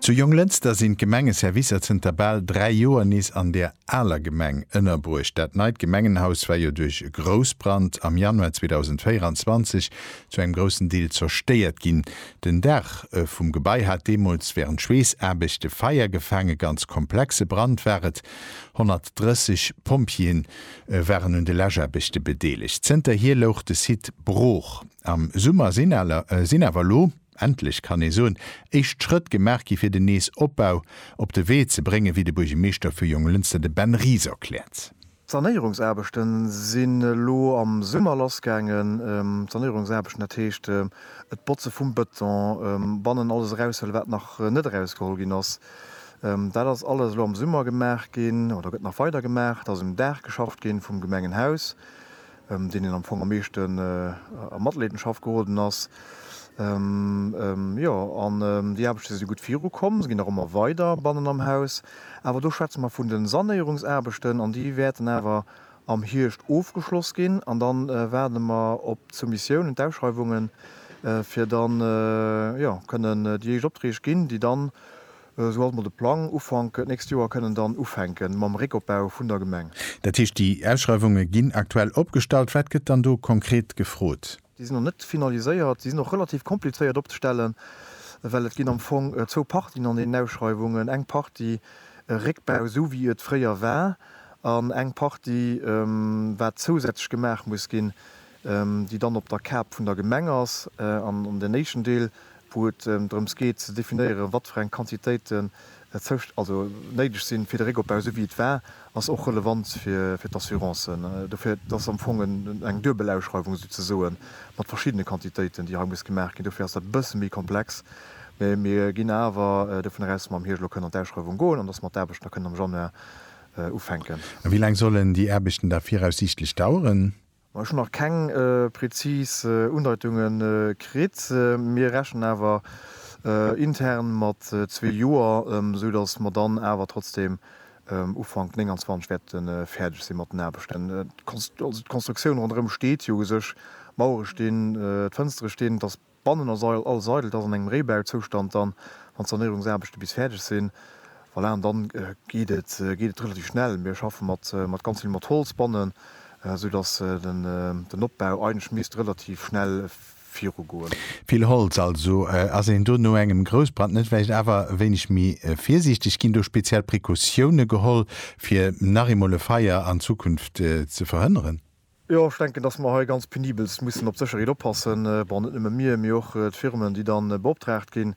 Zu Jonglënster sinn d'Gemengeservicer zënter bal 3 Joer nees an der aler Gemeng ënnerbruecht. Dat neit Gemengenhaus war jo duerch e Groussbrand am Januar 2024 zu engem groussen Deel zerstéiert ginn. Den Daach vum Gebai hat deemools wärend Schweessaarbechte Feier gefaang. E ganz komplexe Brand war et. 130 Pompjeeë waren un de Läschaarbechte bedeelegt. Zënterhier louch de Site brooch. Am Summer sinn awer elo. Endlech kann ee soen, éischt Schrëtt gemaach gi fir den nees Opbau op de Wee ze bréngen, wéi de Buergermeeschter vu Jonglënster, de Ben Ries erkläert. D'Sanéierungsaarbechte sinn elo am Summer lass gaangen. D'Sanéierungsaarbechten, dat heescht et Botze vum Bëton, bannen alles eraushëlle wat nach net erausgeholl ginn ass, dat ass alles elo am Summer gemaach ginn oder gëtt nach weider gemaach. Et ass um Daach geschafft gi vum Gemengenhaus. ëm deen een am Fong am meeschten a Matleedenschaft geroden ass, jo. An déi Aarbechte si gutt virukomm, se ginn nach ëmmer weider bannen am Haus. Awer do schwätze mer vun de Sanéierungsaarbechten an déi wäerten awer am Hierscht ofgeschloss ginn an dann waarde mer op d'Soumissiounen, d'Ausschreiwungen, fir dann, jo, kënnen déi éischt Opträg ginn, déi dann Esou ass mol de Plang. Ufank d'nächst Joer kënnen dann ufänke mam Réckopbau vun der Gemeng. Dat heescht, déi Ausschreiwunge ginn aktuell opgestallt. Wat gëtt dann do konkret gefrot? Déi sinn nach net finaliséiert. Déi sinn och relativ komplizéiert opzestellen, well et ginn am Fong zwou Partien an deenen Ausschreiwungen, eng Partie Réckbau, esou wéi et fréier war, an eng Partie, wat zousätzlech gemaach muss ginn, déi dann op der Kap vun der Gemeng ass, an an den éischten Deel, wou et drëms geet ze definéieren, wat fir eng Quantitéiten also néideg sinn fir de Réckopbau, esou wéi et war, ass och relevant fir d'Assurancen. Dofir, et ass am Fong eng duebel Ausschreiwung esou ze soen, mat verschiddene Quantitéiten, déi hei muss gemaach ginn. Dofir ass dat e bësse méi komplex. Mä mir ginn awer dovunner aus, dass mer am Hierscht elo kënnen an d'Ausschreiwung goen an dass mer d'Aarbechten da kënnen am Januar ufänken. A wéi laang sollen déi Aarbechten da viraussiichtlech daueren? Ma ech hunn nach keng prezis Undeitunge kritt. Mir rechnen awer intern mat zwee Joer, esou datt mer dann awer trotzdeem Ufank 29 wäerte fäerdeg si mat den Aarbechten. D'Konstruktioun ronderëm steet jo u sech, d'Mauere stinn, d'Fënstere stinn. Bannen ass all Seidel, dat ass an engem Réibauzoustand dann, wann d'Sanéierungsaarbechte bis fäerdeg sinn. Voilà, an dann geet et relativ schnell. Mir schaffe mat ganz vill mat Holz bannen, esou datt den Opbau eigentlech misst relativ schnell virugoen. Vill Holz also. Ass een do no engem Groussbrand net vläicht awer e wéineg méi virsiichteg? Ginn do speziell Precautioune geholl, fir nach eemol e Feier an Zukunft ze verhënneren? Jo, ech denken, dass mer hei ganz penibelst mussen op d'Sécherheet oppassen. Bon, net nëmme mir, mee och d'Firmen, déi dann beoptraagt ginn.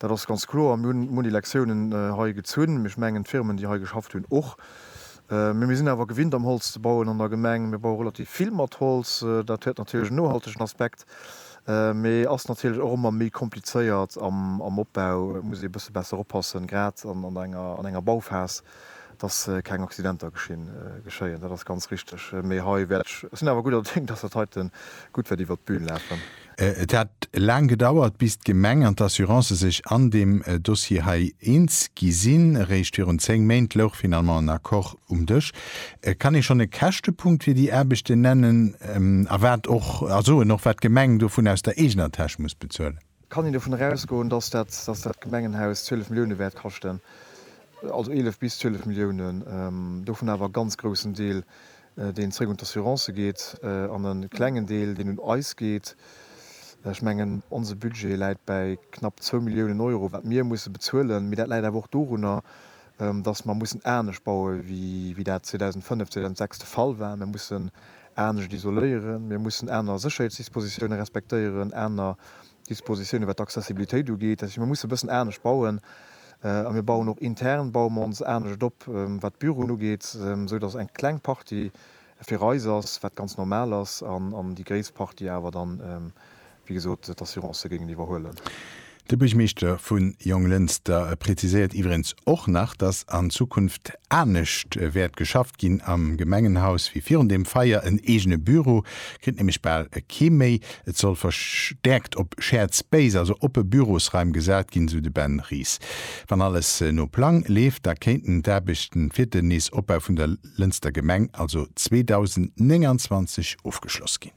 Dat ass ganz kloer. Mir hunn munn Elektiounen hei gezunn, ech mengen d'Firmen, déi hei geschafft hunn, och. Mee mir sinn awer gewinnt, am Holz ze bauen an der Gemeng. Mir baue relativ vill mat Holz. Dat huet natierlech en nohaltegen Aspekt, mee ass natierlech och ëmmer méi komplizéiert am Opbau. Et muss ee e bësse besser oppassen, grad an enger Bauphase. dass keng Accidenter geschéien. Dat ass ganz richteg. Mee hei wäert ech, ech sinn awer gudder Déng, dass dat heite gutt wäert iwwert d'Bün lafen. Et hat laang gedauert, bis d'Gemeng an d'Assurancë sech an deem Dossier hei eens gi sinn. Eréischt virun zéng Méint louch finalement en Accord um Dësch. Kann ee schonn e Käschtepunkt fir déi Aarbechten nennen a wat och, a soen och, wat d'Gemeng dovun aus der eegener Täsch muss bezuelen? Kann een dovunner ausgoen, dass dat Gemengenhaus 12 Milliounen wäert kaschten, also 11 bis 12 Milliounen, dovun awer e ganz groussen Deel, deen zréck un d'Assurancë geet, an e klengen Deel, deen un eis geet? Ech mengen, onse Budget läit bäi knapp zwou Milliounen Euro, wat mir musse bezuelen. Mee dat läit awer och dorunner, dass mer mussen anescht baue wéi dat 2005, 2006 de Fall war. Mir mussen anescht isoléieren, mir mussen aner Sécherheetsdispositioune respektéieren, aner Dispositioune wat d'Accessibilitéit ugeet. Dat heescht, mir musse e bëssen anescht bauen a mir bauen och intern, baue mer ons anescht op, wat d'Büroen ugeet, esou datt eng kleng Partie fir eis ass, wat ganz normal ass, an déi gréisst Partie awer dann wéi gesot, d'Assurancë géingen iwwerhuelen. De Buergmeeschter vu Jonglënster präziséiert iwweregens och nach, datt an Zukunft anescht wäert geschafft ginn am Gemengenhaus wéi virun deem Feier. En eegene Büro kritt nämlech bal kee méi. Et soll verstäerkt op Shared Space, also oppe Bürosraim gesat ginn, sou de Ben Ries. Wann alles no Plang leeft, da kéinten d'Aarbechten fir den nees Opbau vun der Lënster Gemeng also 2029 ofgeschloss ginn.